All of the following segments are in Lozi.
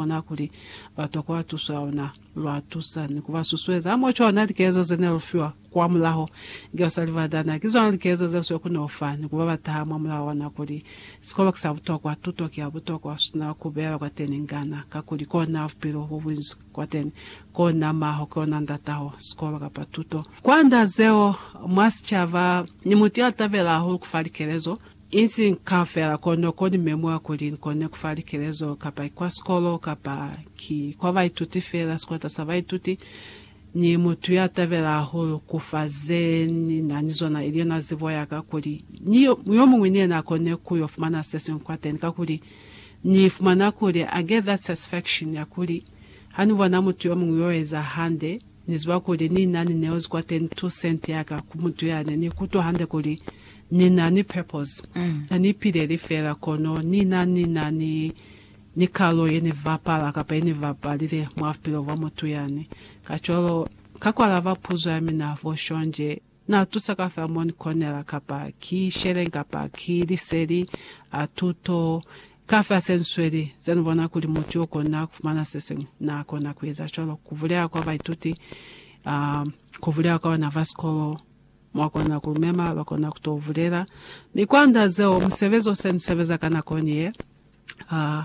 ona kuli ba tokwa tuso ya ona, lwa tusa ni ku ba susueza. Mwa cona, likezo ze ne lu fiwa kwamulaho ki basali ba Dana ki zona likezo ze lu si koni ku fa ni ku ba ba taha mwa mulao wa nako li, Sikolo ki sa butokwa, tuto ki ya butokwa, u sina ku bela kwateni ngana, kakuli kona bupilo bo bunzi kwateni, kona maho, ki ona ndataho sikolo kapa tuto. Kwanda zeo, mwa sicaba, ni mutu ya tabela hahulu ku fa likelezo. Insi nka fela kono ko ni memwa kuli nkone kufa likelezo, kapa ki kwa sikolo, kapa ki kwa baituti fela, sikwata sa baituti. Ni mutu ya tabela hahulu kufa ze ni na ni zona, ili yona zibo yaka, kuli ni yomuñwi ni yena akone kuyo fumana sesiñwi kwateni. Kakuli Ni fumana kuli I get that satisfaction ya kuli ha ni bona mutu yomuñwi yo eza hande, Ni ziba kuli Ni na ni neozi kwa 32 cent ya ka ku mutu yani. Ni kutwa hande kuli Ni na ni purpose. Ha ni ipileli fela, kono Ni na ni na ni, ni kalo ye Ni bapala kapa ye Ni bapalile mwa bupilo bwa mutu yani. Kacwalo, Ka ku alaba puzo ya mina, bo shonje, Na tusa ka fa mo ni konela, kapa ki sheleng, kapa ki liseli, a tuto, kafa se nsweli. Ze ni bona kuli mutu yo kona kufumana se siñwi, na kona ku eza cwalo. Ku bulela kwa baituti, um, ku bulela kwa bana ba sikolo, mwa kona ku lu mema, ba kona ku to bulela. Mi kwa nda zeo, musebezi o se ni sebeza ka nako ni ye, uh,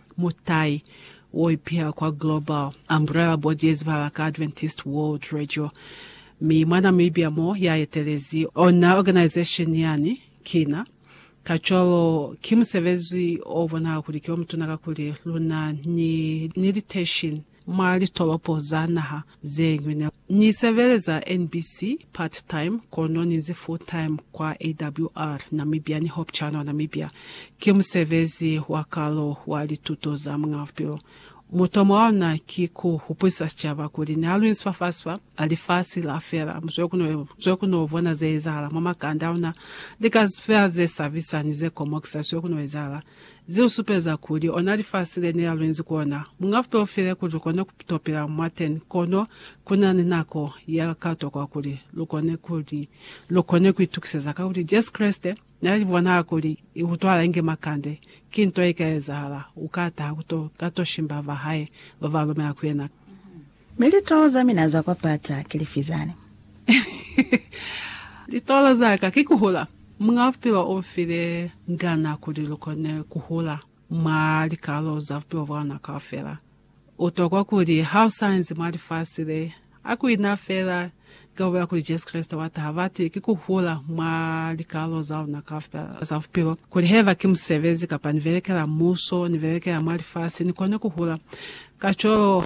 Mutai wo ipiha kwa Global Umbrella Board ye zibahala ka Adventist World Radio, mi mwana muibya mo ya etelezi ona organization yani kina. Kacwalo, ki musebezi o bonahala kuli ki o mutuna kakuli luna ni, ni liteishini. Mwa litolopo za naha ze ñwi ne ni sebeleza NBC part-time kono ni nzi full-time kwa AWR Namibia ni Hope Channel Namibia. Ki musebezi wa kalo wa lituto za Muñaa Bupilo. Mutomo wa luna ki ku hupulisa sicaba kuli ni alwinsi fa fasi fa, a lifasi la fela. Mu zwe ku no, zwe ku no bona ze ezahala mwa makanda a luna, lika fela ze sabisa ni ze komokisa zwe ku no ezahala. Ze lu supeza kuli ona lifasi le ne la lu inzi ku ona. Mu nga fitolofile kuli lu kone ku to pila mwateni, kono ku na ni nako ye ka tokwa kuli lu kone ku li, lu kone ku itukiseza. Kakuli Jesu Kreste na li bonahala kuli i utwala inge makande, ki nto ye ka ezahala, u ka taha ku to ka to shimba ba hae ba ba lumela ku yena. Mi litolo za mina za kwa pata ki lifi zani? Litolo za ka ki kuhula. Muñ'a Bupilo u nfile ngana kuli lu kone kuhula mwa likalolo za bupilo bwa luna kaufela. U tokwa kuli ha u sa inzi mwa lifasi le, a ku ina fela Ka kuba kuli Jesu Kreste wa taha, bati ki ku hula mwa likalolo za luna kaufela za bupilo, kuli haiba ki musebezi, kapa ni belekela muso, ni belekela mwa lifasi, ni kone ku hula. Kacwalo,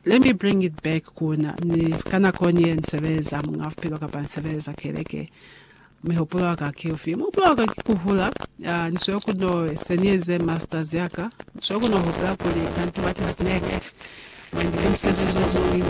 let me bring it back ku na, ni, ka nako ni ye, ni sebeleza Muñ'a Bupilo, kapa ni sebeleza keleke. Mihupulo ya ka ki ufi? Mihupulo ya ka ki ku hula. Uh, ni sweli ku no, se ni eze masters ya ka, ni sweli ku no hupula kuli kanti what is next? Manje ki musebezi o muñwi